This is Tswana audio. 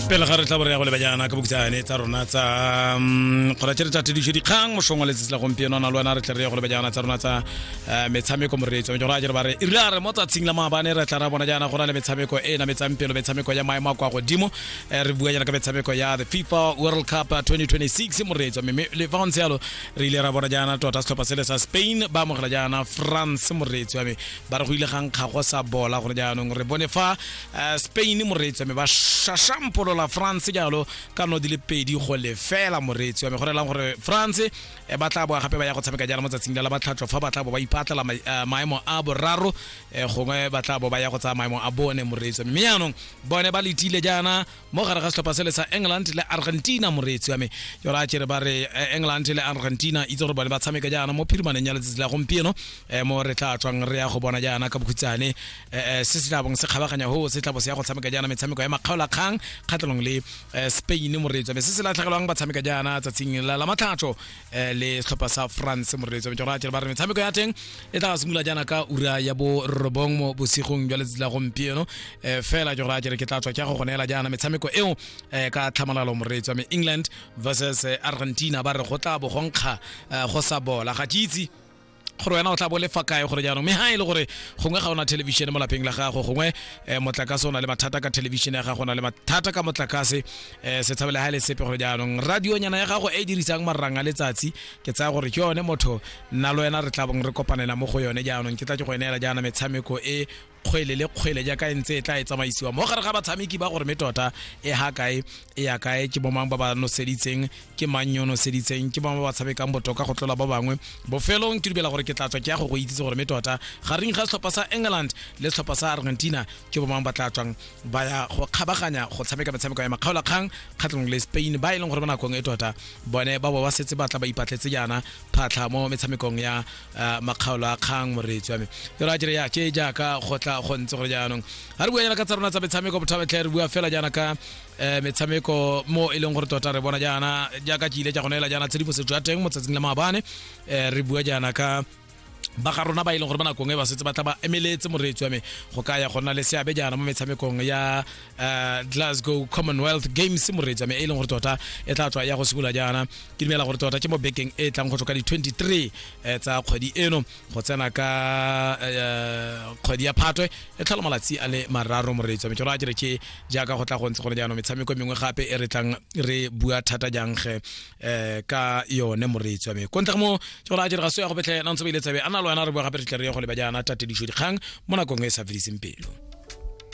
pele ga re tla bore ya go leba jaana ka bokitsane tsa rona tsa mm, kgona tse re tla tedišo dikgang mošong wa letsatsi la gompieno a na le wena re tle re ya go leba jaana tsa rona tsa eh, metshameko moreetso go a jere ba re e rile a re mo tsatsing la maabane re tla ra bona jaana go na le metshameko e e nametsang pelo metshameko ya maemo a kwa godimo Eh, re bua jaana ka metshameko ya the fifa world cup 2026 moreetso mme le fa go ntse yalo re ile ra bona jaana tota setlhopha sele sa spain ba amogela jaana france moreetso ya me ba re go ile ga nkga go sa bola gore jaanong re bone fa eh, spain moreetsi wa me ba shashampolola france jalo ka no di le pedi go lefela moreetsi wa me go relang gore france eh, ba tla boa gape ba ya go tshameka jalo mo tsatsing la la batlhatlho fa ba tla bo ba ipatlela ma- eh, maemo a boraro eh, gongwe ba tla bo ba ya go tsaya maemo a bone moreetsi wa me mme jaanong bone ba letile jaana mo gare ga setlhopha sele sa england le argentina moreetsi wa me ke gore a kere ba re eh, england le argentina itse gore bone ba tshameka jaana mo phirimaneng ya letsatsi la gompieno eh, mo re tla tswang re ya go bona jaana ka bokhutshane eh, se se tlabong se kgabaganya ho se tlabo se ya go tshameka jaana metshameko ya makgaolakgang kgatlhanong le spain moreetsi wa me se se latlhegelwang ba tshameka jaana tsatsing la la matlhatso eh, le setlhopha sa france moreletsi wa metšoratšhere ba re metshameko ya teng e tla simolola jaana ka ura ya bo robong mo bosigong jwa letsatsi la gompieno eh, fela tšoratšhere ke tla tswa ke go go neela jaana metshameko eo eh, ka tlhamalalo moreletsi wa me england versus eh, argentina ba re go tla bo go nkga eh, go sa bola ga ke itse gore wena o tla bo le fa kae gore jaanong mme ha e le gore gongwe ga ona television mo lapeng la gago gongwe eh, motlakase o na le mathata ka television ya gago o na le mathata ka motlakase eh, se tshabele ha e le sepe gore jaanong radionyana ya gago e e dirisang marang a letsatsi ke tsaya gore ke yone motho nna le wena re tla bong re kopanela mo go yone jaanong ke tla ke go eneela jaana metshameko e kgwele le kgwele jaaka e ntse e tla e tsamaisiwa mo gare ga batshameki ba gore me tota e ha kae e ya kae ke bomang ba ba noseditseng ke mang yo noseditseng ke bangwe ba ba tshamekang botoka go tlola ba bangwe bofelong ke dubela gore ke tla tswa ke ya go go itsise gore me tota ga reng ga setlhopha sa england le setlhopha sa argentina ke bomang ba tla tswang ba ya go kgabaganya go tshameka metshameko ya makgaolakgang kgatlhanong le spain ba e leng gore mo nakong e tota bone ba bo ba setse ba tla ba ipatletse jaana phatlha mo metshamekong ya Ah, makgaolo a kgang moreetsi wa me ke ra jere ya ke jaaka go tla go ntse gore jaanong ga re bua jaana ka tsa rona tsa metshameko botho betlhe re bua fela jaana ka um metshameko mo e leng gore tota re bona jaana jaaka ke ile ja go neela jaana tshedimosetso ya teng mo tsatsing la maabane um re bua jaana ka ba ga rona ba e leng gore ba nakong e ba setse ba tla ba emeletse moreetsi wa me go ka ya go nna le seabe jaana mo metshamekong ya uh, glasgow commonwealth games moreetsa me e leng gore tota e tla tswa ya go simolola jaana ke dumela gore tota ke mo bekeng e tlang go tswa ka di-23 eh, tsa kgwedi eno go tsena ka eh, kgwedi ya phatwe e tlhola malatsi a le mararo moreetsa me ke ra kere ke jaaka go tla go ntse gone jaanong metshameko e mengwe gape e re tlang re bua thata jang ge eh, ka yone moreetsa me ko ntle ga mo ke ra kere ga so ya go betlhe na ntse ba ile tsabe a na le wena re bua gape re tle re ye go leba jaana tatedišo dikgang mo nakong e e sa fediseng pelo